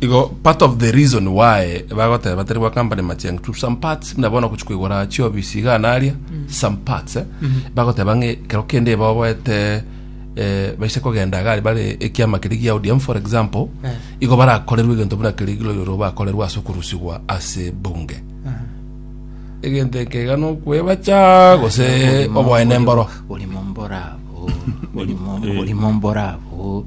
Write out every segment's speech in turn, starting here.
Igo part of the reason why bagoteba tari gwa company macheng to some parts muna bono kuchi kuigora chiobisi iga na aria some parts eh, bagoteba ng'e kero kende baoboete eh, baise kogenda iga aria bare ekiama keri gia ODM for example Eh. igo barakorerwe egento buna keri girorero bakorerwa ase okurusigwa ase bunge egento eke iga nokwebacha gose oboene mboro Olimo mborabo. Olimo mborabo.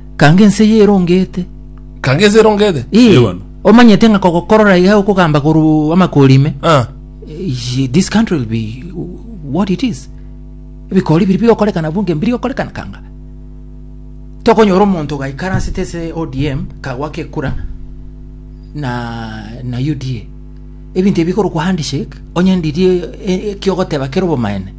Kanga ense eye erongete. Kanga ense erongete. Ee, Ewana. omanyete ng'a kogokorora iga okogamba korwa amakori ime. Ah. Eh, This country will be what it is. Ebikori biri bigokorekana bunge mbiri gokorekana kanga. Tokonyora omonto gaikaransete ase ODM kagwa kekura na na UDA. Ebinto ebi bikorokwa handshake onye ndirie eh, eh, kiogoteba kere obomaene.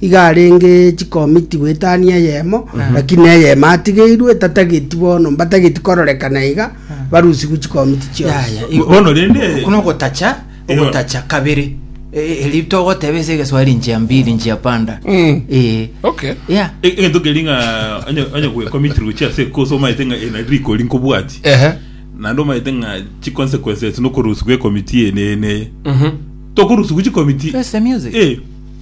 Iga arenge chikomiti goetania eyemo, lakini eyemo atigeirwe etatageti bono, mbatageti kororekana iga barusigwe chikomiti chionsi. Yaya, Bo- igo- bono rende- kuno ogotacha Eyo. ogotacha kabere Eh, eri togoteba ase egeswahili njia mbili njia panda Mm. Eh, Okay. yeah. E- egento keri ng'a onye- onye gwekomiti gochia ase ekoso omaete ng'a ena rikori nkobwati Ehe. naende omaete ng'a chiconsequences nokorusigwa ekomiti ene ene Mhm. tokorusigwa chikomiti Face the music. Eh,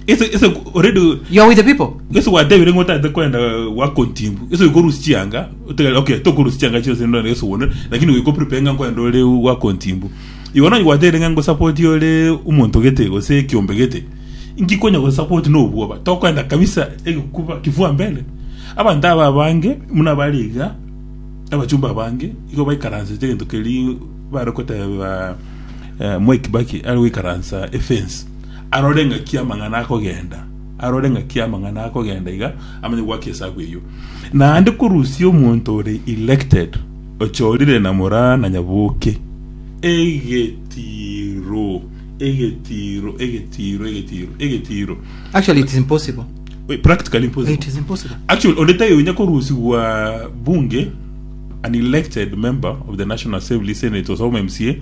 Ese ese already You are with the people. ese gwatebire ng'o otagete kwenda gwakontimbu ese oikorusi chianga otegere okay tokorusi chianga chionsi ndore ese one lakini goiko prepare ng'a nkwenda ore gwakontimbu igo nonye gwatebire ng'a ngosapoti ore omonto gete gose ekiombe gete inki konya gosapoti na obwoba tokwenda kabisa egekuba kifua mbele abanto aba abange muna bare iga abachumba abange igo baikaransete egento keria bare koteba eh, Mwai Kibaki are goikaransa efence Arore ng'aki amang'ana akogenda, arore ng'aki amang'ana akogenda iga, amanye goaka esabu eyio. Naende korusia omonto ore elected, ochorire na moraa na nyaboke, egetiiro, egetiiro, egetiiro, egetiiro, egetiiro. Actually, it is impossible. Wait, practically impossible. It is impossible. Actually, onde tayo inya korusigwa bunge an elected member of the National Assembly, Senate, or some MCA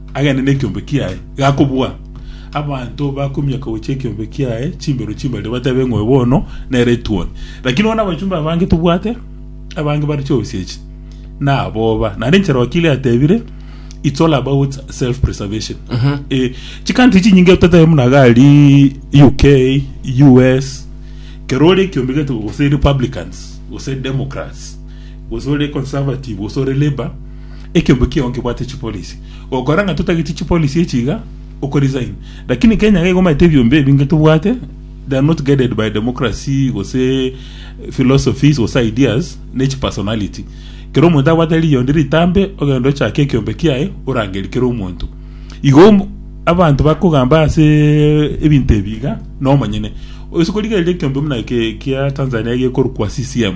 agende nekiombe kiaye, gakobua. Abanto bakomiaka gochia ekiombe kiaye chimbero chimbare, batebe ng'oyo bono nere etuoni. Lakini bono abachumba abange tobwate, abange bare chiosechi, na aboba. Naende enchera okia eria yatebire, it's all about self preservation. Eh, chicountry chinyinge totebe buna gari UK, US, kero ore ekiombe gete gose republicans, gose democrats, gose ore conservative, gose ore labour, Ekeombe kiao nkebwate chipolisi. Gokora ng'a totageti chipolisi echi iga, okoresign. Lakini Kenya iga igomanyete ebiombe ebi inge tobwate, they are not guided by democracy gose philosophies gose ideas, ne chipersonality. Kera omonto abwate riiya onde ritambe, ogende ochake ekeombe kiaye, orangerie kera omonto. Igo omo- abanto bakogamba ase ebinto ebi iga, nomonyene. Ase korigereria ekeombe buna eke kia Tanzania gekorokwa CCM,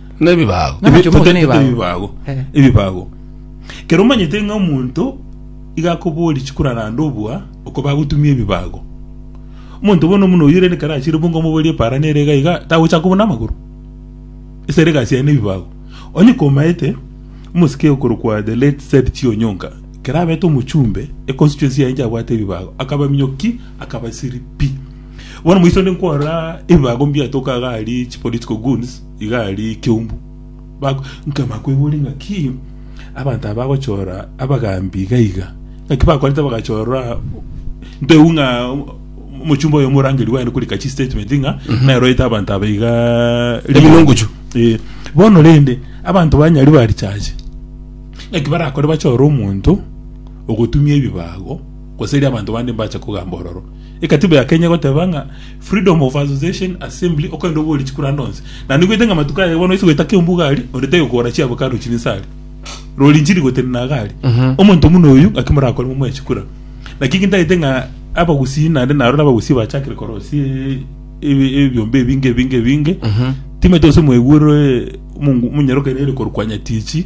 Nebibago. Ng'ana Ebi- chomoke ne ebibago. ebibago Eh. ebibago kero omanyete ng'a omonto iga akobori chikuraranda obua oko bagotumia ebibago omonto bono buna oyio rende kare achire bongo omoborie para nere iga iga tagochaka kobuna amagoro ase ere egasi yaye na ebibago onye komaete omosike okorokwa the late Zedchie Onyonka kero abete omochumbe e constituency yaye inche abwate ebibago akabaminyoki akabasiri pi bono moiso nde nkwarora ebibago mbiatoka iga aria chi political goons Iga aria ekeumbu bak- nkama kwegure ng'aki abanto aba bagochora abagambi iga iga. Ng'aki bakorete bagachora nteu ng'a omochumba oyo omorangeri baye korika chistatement ng'a naroete abanto aba iga Ebinunguchu. Eh, bono rende abanto banyari barichache ng'aki barakore bachore omonto ogotumia ebibago gose eria abanto bande mbache kogamba ororo. Ekatiba ya Kenya egoteba ng'a Freedom of Association, Assembly, okorende oborie chikuranda onsi. Na nigoite ng'a amatuko aya bono ase goeta kembuga aria, onde taiyo kogora chiabo kare rochio ninsa aria. Rori inchiri gotenena iga aria. Omonto buna oyio, ng'aki morakore momoe chikura? Naki inki ntagete ng'a abagusii naende narore abagusii bachakire korosia e- ebe- ebiombe ebinge ebinge ebinge, timanyete gose mwaigure omongu- omonyorokera ere korwa kwa Nyatichi,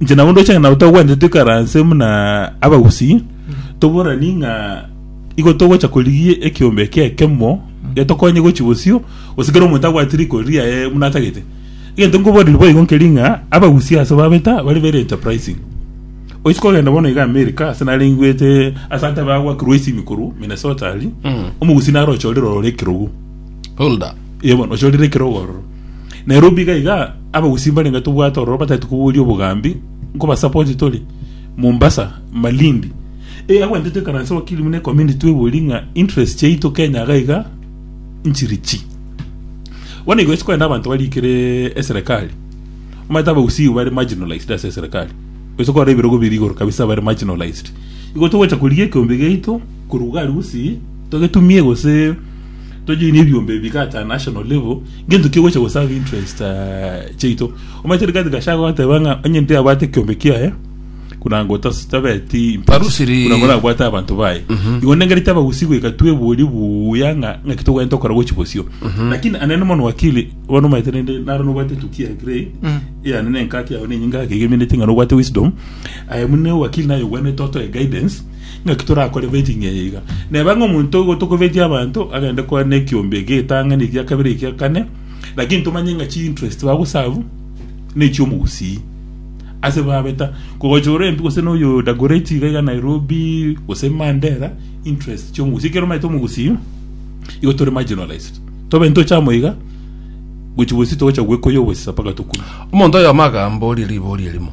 Inche nabo ndoche ng'a nabo togwente tuikaranse buna abagusii toborani ng'a igo togocha korigia ekiombe eke ekemo getokonye gochi bosio gose kera omonto abwate riko riaye buna atagete egento nkoboria boigo nkeri ng'a abagusii ase babeta bare very enterprising oisi kogenda bono iga America ase narenguete ase abanto abagwakirwe isimi korwa Minnesota aria omogusii naro ochorire ororo ekerogo Hulda. Ee bono, ochorire ekerogo ororo. Na ere obiga iga, abagusii mbarenge tobwate ororo batagete koboria obogambi, nkobasapoti tore, Mombasa, Malindi. Ee agwente toikaranse wakili buna ecommunity tweborie ng'a interest chiaito Kenya iga iga nchiri chi. Bono igo chikogenda abanto baria ekere eserekari, omanyete abagusii igo bare marginalized ase eserekari. Gose kwarora ebirogo biria igoro kabisa bare marginalized. Igo togocha korigia ekeombe giaito korwa iga aria gusii, togetumie gose. tojoine ebiombe ebi iga at a national level ngento ki gocha goserve interest eh, chiaito omanyete rigathi gashago gateba ng'a onye ndabwate ekiombe kiaye kunanga otas- tabeti impact, Tarusiri. kunanga orabwate abanto baye igo nengerete abagusi goika twebori buya ng'a ng'aki togwenerete gokora gochi bosio lakini anene mono wakili bono omanyete rende naro nobwate etukia ya grey eyane nenkaki yago nenyinga yake iga emeneti ng'a nobwate wisdom aye buna ewakili naye ogwenerete otoe guidance Naki torakore beti ng'a eye iga? Neba ng'a omonto oyo gotokobetia abanto agende kwane ekiombe ekia etang'ani ekia kabere ekia kane, lakini tomanye ng'a chiinterest bagosavu nechiomogusii ase babeta kogochora empi gose noyo Dagoretti iga iga Nairobi gose Mandera interest chiomogusii ekero omanyete omogusii igo tore marginalized tobe ntoche amo iga gochi bosio togocha gwekoyia obosisa mpaka tokure. Omonto oyomo agambooria riboria erimo,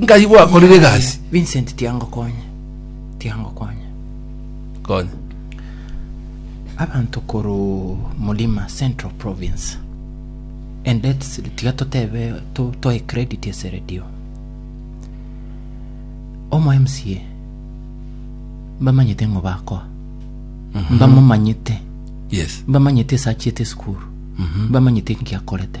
nkai gwakorire egasi Vincent tiangokonya tiangokonya konya abanto koru mulima central province and that's tiga totebe to, to a credit ase radio omo mca mbamanyete ng'o bakoa mbamomanyete yes mbamanyete esachiete esukuru mbamanyete ngiakorete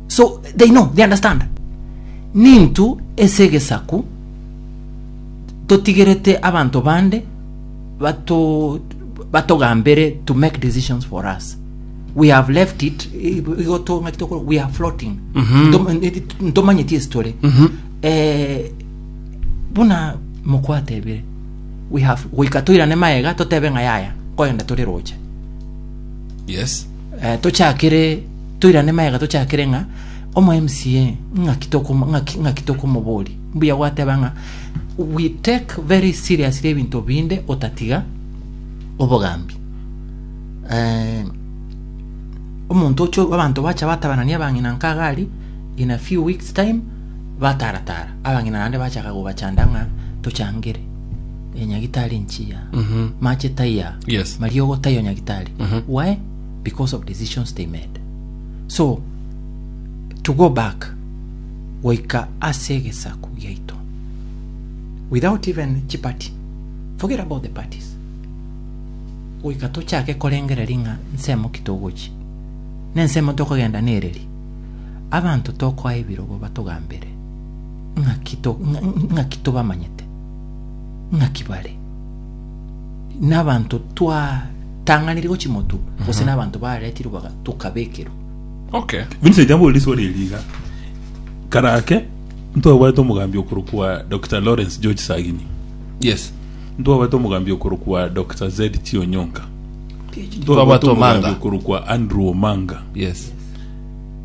So they know, they understand. Nintw ase egesaku totigerete abanto bande bato batogambere to make decisions for us. We have left it igo tong'aki tokora we are floating. Ntom- Ntomanyeti ase tore. Eh, buna mokwatebire we have goika toirane maega totebe ng'a yaya koyenda tore roche. Yes. Tochakere, toirane magega tochakere ng'a omo MCA ng'aki tokomo ng'aki ng'aki tokomoboria. Mbuya gwateba ng'a we take very seriously ebinto binde otatiga obogambi. Eh, omonto oche abanto bacha batabanania abang'ina nkaga aria in a few weeks time bataratara abang'ina naende bachaka gobachanda ng'a tochangere. eh, nyagitari nchiya Mhm. mache taiya Yes. mariogo taiyo nyagitari Mhm. why because of decisions they made so to go back goika ase egesaku giaito without even chipati forget about the parties goika tochake korengereria ng'a nsemo ki togochi na ensemo tokogenda nereri abanto tokoa ebirobo batogambere ng'aki to- ng'a- ng'aki tobamanyete ng'aki bare? Nabanto twatang'anirie gochimotu gose nabanto baretirwe baga- tokabekerwa? Okay. Vincent amborire iswali eri iga kare ake ntwabwate omogambi okorokwa Dr Lawrence George Sagini Yes. ntwabwate omogambi okorokwa Dr ZT Onyonka Twabwate ntwabwate omogambi Omanga. okorokwa Andrew Omanga Yes.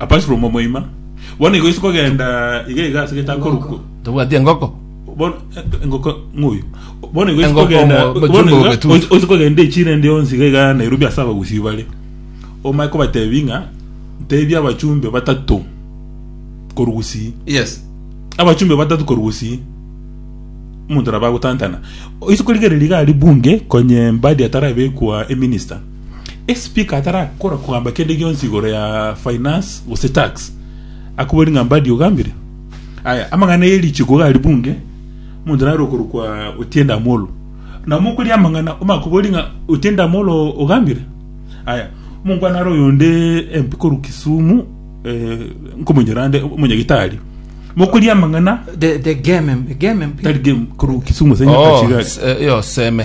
Abasalomu omoima, bono igo ase kogenda iga iga ase gete akorokwa. Tobwati engoko. Bono eh, engoko ng'oyo. Bono igo ase Engoko kogenda omo- bono bochumba iga obetutu. ase- ase kogenda echira ende yonsi iga iga Nairobi ase abagusii bare. Omae kobatebi ng'a tebia abachumbe batato korwa gusii. Yes. abachumbe batatu korwa gusii omonto nabo agotantana ise korigereria iga aria bunge konye mbadi atarabekwa eminista Esipika atarakora kogamba kende gionsi igoro ya finance gose tax, akoboria ng'a Mbadi ogambire? Aya, amang'ana ye richiko iga ari bunge, omonto nare okorokwa Otiende Amolo. Na mokoria amang'ana, omakoboria ng'a Otiende Amolo ogambire? Aya, omonkwana are oyonde MP korwa Kisumu, eh, nkomonyora nde, omonyagitari. Mokoria amang'ana, The, the game, game mpi. tari game, korwa Kisumu ase Oh, Nyakachigari. s- eh, yo seme.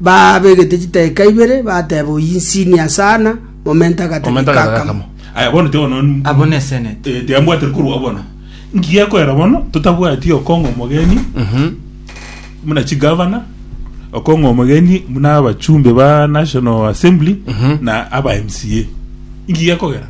Baabegete chitaeka ibere, bateba, Oyio insi ni asana, momenta agatageka Momenta agatageka akamo. akamo. Aya bono tiga bono n- Abwo ne senate. Eh, tiga mbwatire korwa agwo bono nki gekorera bono totabwati okong'a omogeni muna chigavana okong'a omogeni muna abachumbe ba national assembly na aba mca nki gekogera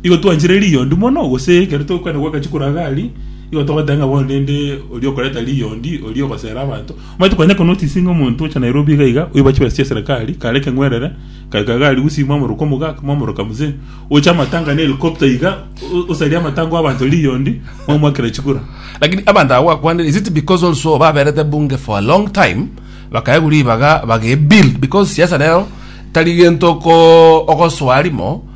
Igo twanchire riondi mono, gose ekero togokwena gwakachi koraga aria, igo togoteba ng'a bono rende oria okoreta riondi, oria ogosera abanto. Omanyete konya konotice ng'a omonto ocha Nairobi iga iga, oiba chibesa chia serekari, kare ekeng'werere, gaika egari gusii mwamoroka omogaka, mwamoroka mzee, oche amatanga na helicopter iga, o- osarie amatanga oo abanto riondi, mwamoakera chikura. Lakini abanto aba gwakwanire, is it because also baberete bunge for a long time, bakaegwa ribaga, bage-build, because siasa nero tari gento ko- ogosoa rimo,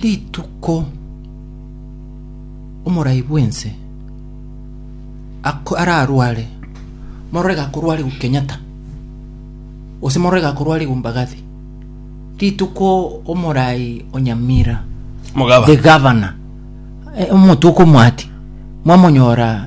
Rituko omorai bw'ense ako- ararware, morore gakorwara igwa Kenyatta, gose morore gakorwara igwa Mbagathi, rituko omorai o Nyamira, Mogaba. the governor, eh, omonto okomwati, mwamonyora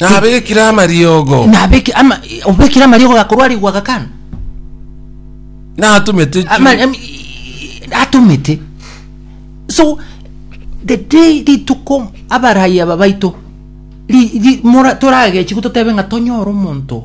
Nabekire amariogo. nabeke ama obekire amariogo gakorwarigwa gakana Natumete chi- Ama- em- i- i- atomete so the day rituko abaraya aba baito ri- ri- mora- toragechi gototebe ng'a tonyore omonto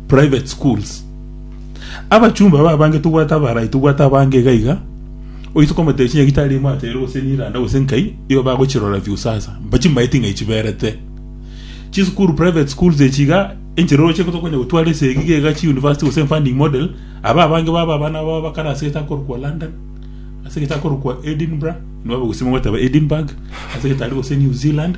Private schools. Abachumba babange tobwate abarai tobwate abange iga iga oise komotebia chinyeni gitari imo atere gose niranda gose nkai igo bagochirora view sasa mba chimaeti ng'ai chiberete chisukuru private schools echi iga enchera oroche tokonya gotwara ase egi iga iga chi university gose funding model aba abange baba abana babo bakare ase etakorokwa London ase etakorokwa Edinburgh nigo bagosima goteba Edinburgh ase getari gose New Zealand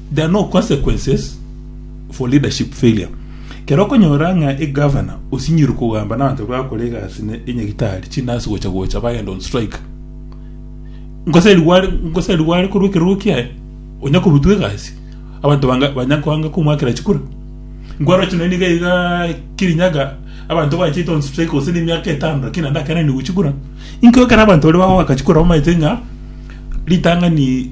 There are no consequences for leadership failure. Kero okonyora ng'a egavana osinyirwe kogamba nabanto bakore egasi ne enyagitari chinasi gocha gocha bagenda on strike. Ngosa rigo are ngosa rigo are korwa ekerogo kiaye onya korutwa egasi abanto banga banya kwanga komwakera chikura. Nkwaroche naende iga iga Kirinyaga abanto bachete on strike gose ne emiaka etano lakini naende akananigwe chikura. Inkio ekero abanto baria bagoaka chikura bamaete ng'a ritang'ani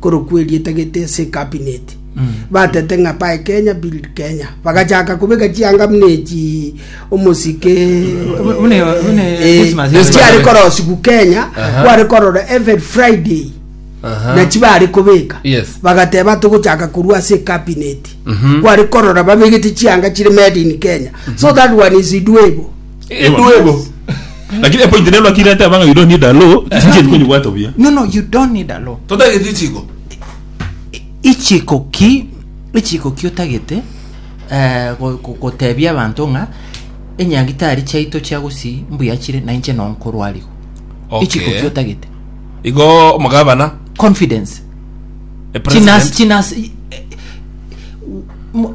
korokwa erieta gete ase ecabinet batete ng'a buy kenya build kenya bagachaka kobeka chianga buna echi omosike Bu- bune- bune Eh, Christmas, yes, chiare bane- korosigu kenya Aha. kware korora every friday Aha. nachi bare kobeka Yes. bagateba togochaka korwa ase cabinet Mhm. kware korora babegete chianga chire made in kenya so that one is doable Eduego. Lakini epointi nero naki irete abanga you don't need a law, chinchiri konyibwata buya. No, no, you don't need a law. Totagete ichiko. ichiko ki ichiko ki otagete eh, go- go- gotebia abanto ng'a enyagitari chiaito chia gusii mbuya chire na inche no nkorwarigo Okay. ichiko ki otagete Igo omogabana. confidence a president. chinasi chinasi eh, eh, mo-